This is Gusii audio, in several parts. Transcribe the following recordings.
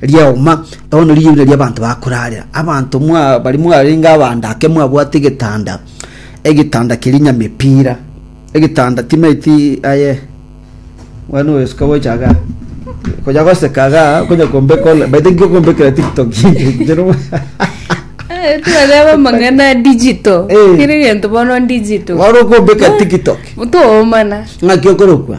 Riauma, bono neriyo riuda ri'abanto bakorarera, abanto mwa- baria mwarenge abande ake mwabwate egetanda, egetanda keria nyamepira, egetanda timaeti aye Mwana oyo suka gocha iga. Konya goseka iga, konya kombeka online. By the way, nkokombekera TikTok. Ncheno- Eh, twareba amang'ana digital Eh. kere gento bono digital Wari okombeka TikTok. toomana Ng'aki okorokwa.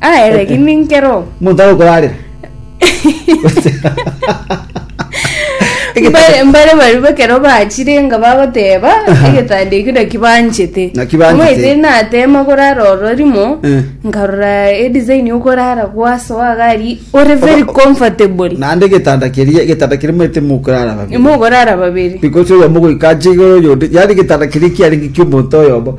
Aye regi ninke ro. Omonto agokorarera. Mbare- mbare baria ekero bachire nga bagoteba Aha. egetanda ekio naki banchete Naki banchete. Omaete natema korara oro rimo Eh. nkarora edesign yokorara gwasoa gari ore very Oba- comfortable naende egetanda keria egetanda keria maete mokorara babere mokorara babere because oyomo goika ache igoro oyonde yaani egetanda keria kiarenge kia omonto oyomo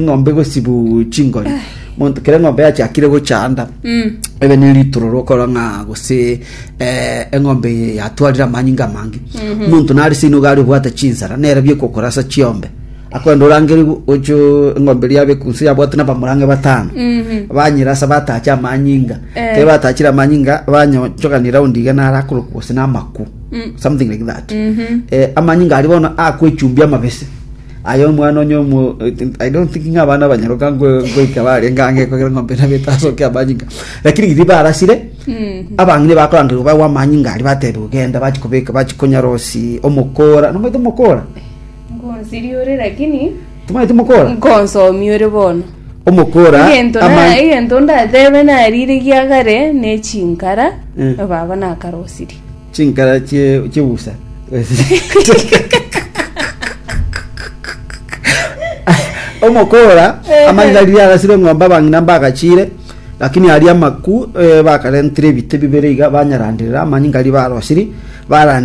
ng'ombe gosibu chingori monto kera ng'ombe yachakire gochanda Mm. ebe ne ritororo okora ng'a gose eh, eng'ombe yatwarire amanyinga amange omonto nare seino gari obwate chinsara nere biekokora asa chiombe akwenda orangere ocho eng'ombe ria abe kunse yabwate nabamorange batano Mhm. banyira asa batache amanyinga Eh. kere batachire amanyinga banyochogani raundi iga nare akorokwa gose namaku Mm. something like that Mhm. eh, amanyinga ari bono akwechumbia amabese Aye omwana onye omo... I don't think ng'a abana abanyaroka ngo- ngoika barenge ang'e ekogera eng'ombe nabo etasokia amanyinga. Lakini riria barasire, abang'ina bakorangerwa bagwa amanyinga aria batebiwa genda bachi kobeka bachi konyarosi omokora. Nomanyete omokora? Ngonsiri ore lakini Tomanyete omokora? nkonsomi ore bono Omokora egento ama- na egento ndatebe narire giagare ne chinkara Eh. baba nakarosirie Chinkara chie- chi'ubusa. Omokora amanyete riria arasire eng'ombe abang'ina mbagachiire, lakini aria amaku eh, bakarentire ebite bibere iga banyaranderera amanyinga ribaarosiri, barande